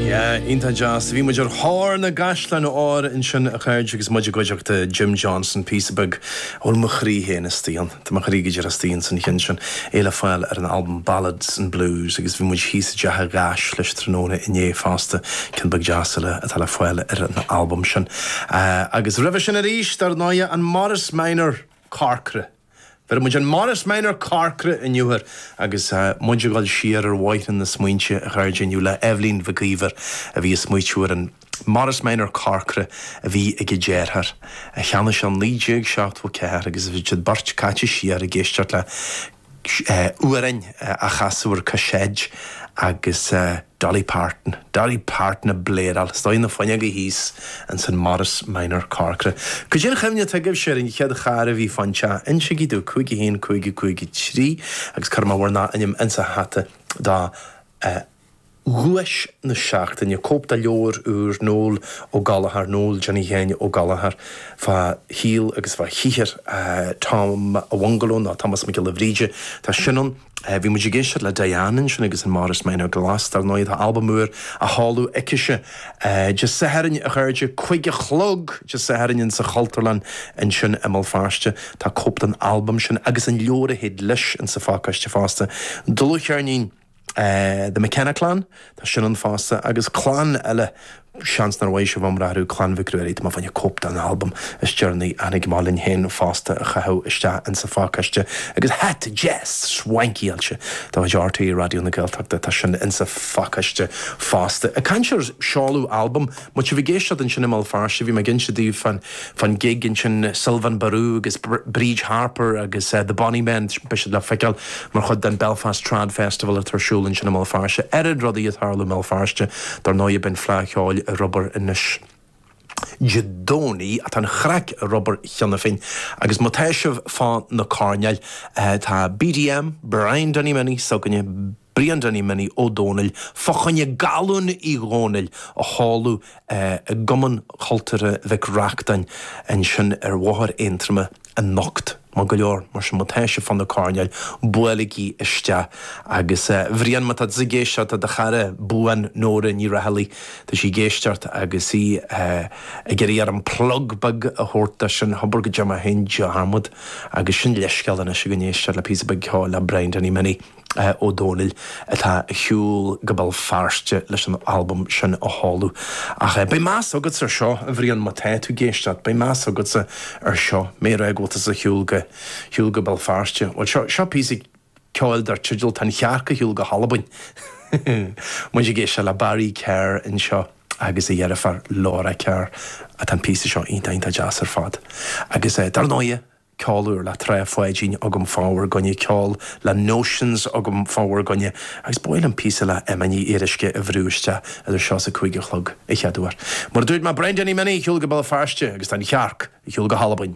Yeah, iontach deas. Bhí muid ar thóir na gcaisleán óir ansin a chairde agus muid i gcuideachta Jim Johnson, píosa beag a bhfuil mo chroí féin istigh ann, tá mo chroí go díreach istigh ann san cheann sin, é le fáil ar an albam Ballads and Blues agus bhí muid thíos i dteach a gháis leis tráthnóna inné fosta, ceann beag deas eile atá le fáil ar an albam sin. Agus roimhe sin arís, dar ndóighe, an Morris Minor corcra. Bheir muid an Morris Minor corcra inniu air agus muid ag dul siar ar bhóithrín na smaointe a chairde inniu le Eibhlín Mhic Íomhair a bhí ag smaoitiú ar an Morris Minor corcra a bhí ag a deartháir, a cheannaigh sé i 1974 agus bhí siad beirt caite siar ag éisteacht le amhráin á chasadh ar caiséad agus. Dolly Parton, Dolly Parton a bpléadáil staonadh na fuinneoga thíos ins an Morris Minor corcra. Caidé an chuimhne atá agaibhse ar an chéad charr a bhí fán teach, insigí domh, 51, 55, 3, agus cuirfidh mé bhur ndá ainm ins a' hata do dhuais na seachtaine, cóip de leabhar úr Noel Ó Gallchóir, Noel Johnny Sheáin Ó Gallchóir, fá shaol agus fá shaothar Tom a' Bhungalow, nó Tomás Mac Giolla Bhríde, tá sin ann. Bhí muid ag éisteacht le Diane ansin agus an Morris Minor glas, dar ndóigh, tá albam úr á sheoladh aicise Dé Sathairn, a chairde, cúig a chlog Dé Sathairn in sa Chultúrlann ansin i mBéal Feirste. Tá cóip den albam sin agus an leabhar a théid leis in sa phácáiste fosta, dlúthcheirnín The McKenna Clan, Tá sin ann fosta, agus clann eile, seans nár mhothaigh sibh iomrá orthu, Clann Mhic Ruairí, tá mé fá choinne cóip den albam is deireanaí a tháinig amach linn féin fosta a chaitheamh isteach in sa phácaiste, agus hata deas swankáilte de chuid RTÉ Raidió na Gaeltachta, tá sin in sa phacáiste fosta. Ag caint ar seoladh albam, Má tá sibh ag éisteacht ansin i mBéal Feirste, bhí mé ag inse daoibh fán gig ansin, Sylvain Barou agus Bríd Harper agus The Bonny Men, beidh siad le feiceáil mar chuid den Belfast Trad Festival atá ar siúl ansin i mBéal Feirste. Oiread rudaí ag tarlú i mBéal Feirste, dar ndóigh, beidh an Fleadh Cheoil ar obair anois Dé Domhnaigh, tá an chraic ar obair cheana féin agus má tá sibh fá na coirnéil, tá BDM, Brian Danny Minnie, s'againne, Brian Danny Minnie Ó Dónaill fá choinne Galún Uí Dhónaill a sheoladh i gCumann Cultúrtha Mhic Reachtáin ansin ar Bhóthar Aontroma anocht. Maith go leor, mar sin má tá sibh fá na coirnéil, buailigí isteach. Agus a Bhrian, má tá tusa ag éisteacht, tá do chara buan Nóra Ní Raghallaigh, tá sí ag éisteacht agus í ag iarraidh orm plug beag a thabhairt do sin, hobair go dtearn mé féin dearmad. Agus sin leithscéal anois againn éisteacht le píosa beag ceoil le Brian Danny Minnie. Ó Domhnaill atá ar shiúl go Béal Feirste leis an albam sin a sheoladh. Ach beidh meas agatsa ar seo, a Bhrian, má tá tú ag éisteacht, beidh meas agatsa ar seo, mar go bhfuil tusa ar shiúl go, shiúl go Béal Feirste. Bhuel, seo, seo píosa ceoil dar teideal Tá an Chearc ar Shiúl go hAlbain. Muid ag éisteacht le Barry Kerr anseo agus a dheirfiúr Laura Kerr. Tá an píosa seo iontach, iontach deas ar fad. Agus dar ndóighe. ceol úr le Trá Pháidín agam fá bhur gcoinne ceol le Notions agam fá bhur gcoinne agus ba mhaith liom píosa le Emma Ní Fhíoruisce a bhrú isteach idir seo is a cúig a chlog a chéaduair mar dúirt mé Brian Danny Minnie ar shiúl go Béal Feirste agus Tá an chearc ar shiúl go hAlbain.